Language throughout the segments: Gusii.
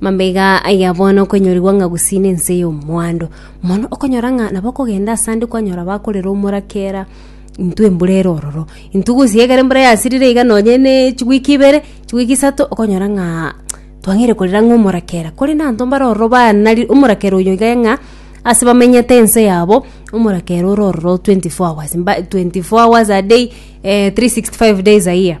Mambaiga aya bono okonyorigwa ng'a gusii n'ense y'omwando mono, okonyora ng'a nabo okogenda ase ande kwanyora bakorera omoraka era intwe embura ere ororo. Intwe gosii ekero embura yasirire iga nonye ne chiweek ibere, chiweek isato, okonyora ng'a twang'eire korera ng'a omoraka era. Korende abanto mbare ororo banari omoraka ere oyo iga ng'a ase bamenyete ense yabo, omoraka ere ore ororo twenty four hours mba twenty four hours a day three sixty five days a year.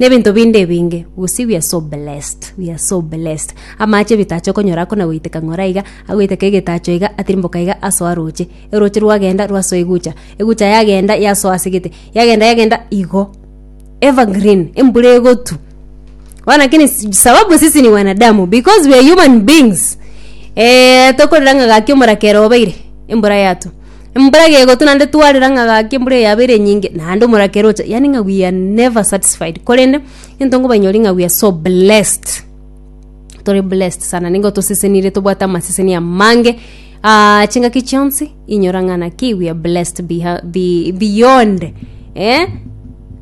Nebinto binde ebinge gose we are so blessed we are so blessed amache ebitacho okonyora akona goiteka ng'ora iga agoiteka egetacho iga atirimboka iga asoa roche eroche rwagenda rwasoa egucha egucha yagenda yasoa ase gete yagenda yagenda igo evergreen embura egotu bono lakini si- sababu sisi ni wanadamu because we are human beings tokorera ng'a gaki omorakera obeire embura yatwa. Embura egegotwa naende twarera ng'a gaki embura eye yabeire enyinge naende omoraka eroche yaani ng'a we are never satisfied korende egento nkobanyori ng'a we are so blessed tore blessed sana nigo tosesenire tobwate amaseseni amange aa chingaki chionsi inyora ng'a naki we are blessed beha be beyond eh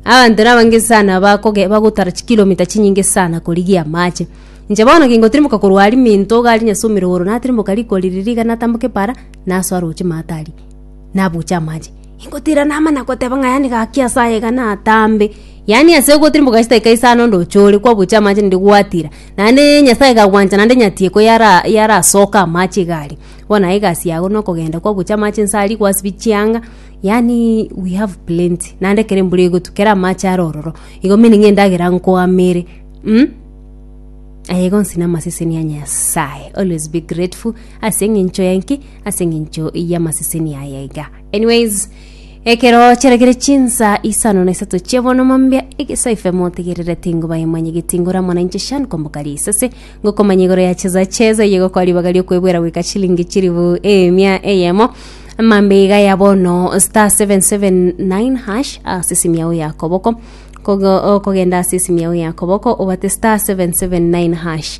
abanto nabo abange sana bakoge bagotara chikilomita chinyinge sana korigia amache. Inche bono kingotimoka korwa aria minto iga aria nyasomire igoro natirimboka riko riria iga natamboka epara. Naso aroche Matari, nabuche amache. Ingotira nama nagoteba ng'a yani gaki ase aye iga natambe. Yani ase ogotira mboka chitaika isano ndoche ore kwabuche amache naende gwatira. Naende Nyasaye kagwancha naende nyatieko yara yarasoka amache iga aria. Bono naye egasi yago nokogenda kwabuche amache inse aria kwasibie chianga, yani we have plenty. Naende ekero embura egotwa kera amache are ororo, igo meaning endagera nkoamere mh. Aye igo nsinye amaseseni a Nyasaye. Always be grateful. Ase engencho y'enki? Ase engencho y'amaseseni aya iga. Anyways, ekero chiaragere chinsa isano na isato chia bono mambia egesa ifemo tegerere tingo bayemanye getingora mwana inche shan kombokari isase ngokomanya igoro ya cheza cheza yego kwa ribaga riokwebwera gweka chilingi chiribu emia eyemo mambe iga ya bono star 779 hash ase simi yao ya koboko Kogo- okogenda ase simi yao ya koboko obate star 779 hash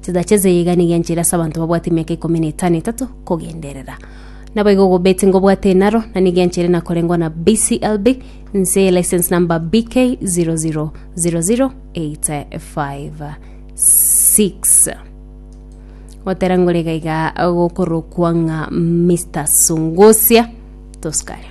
Chitache echiga nigo enchera ase abanto babwate emiaka ikomi na etano etato kogenderera. Naboigo gobeti ngobwate enaro, na nigo enchera nakorengwa na BCLB nse license number BK 0000856 gotera ngore gaiga gokorokwa ng'a Mr Sungusia tosikare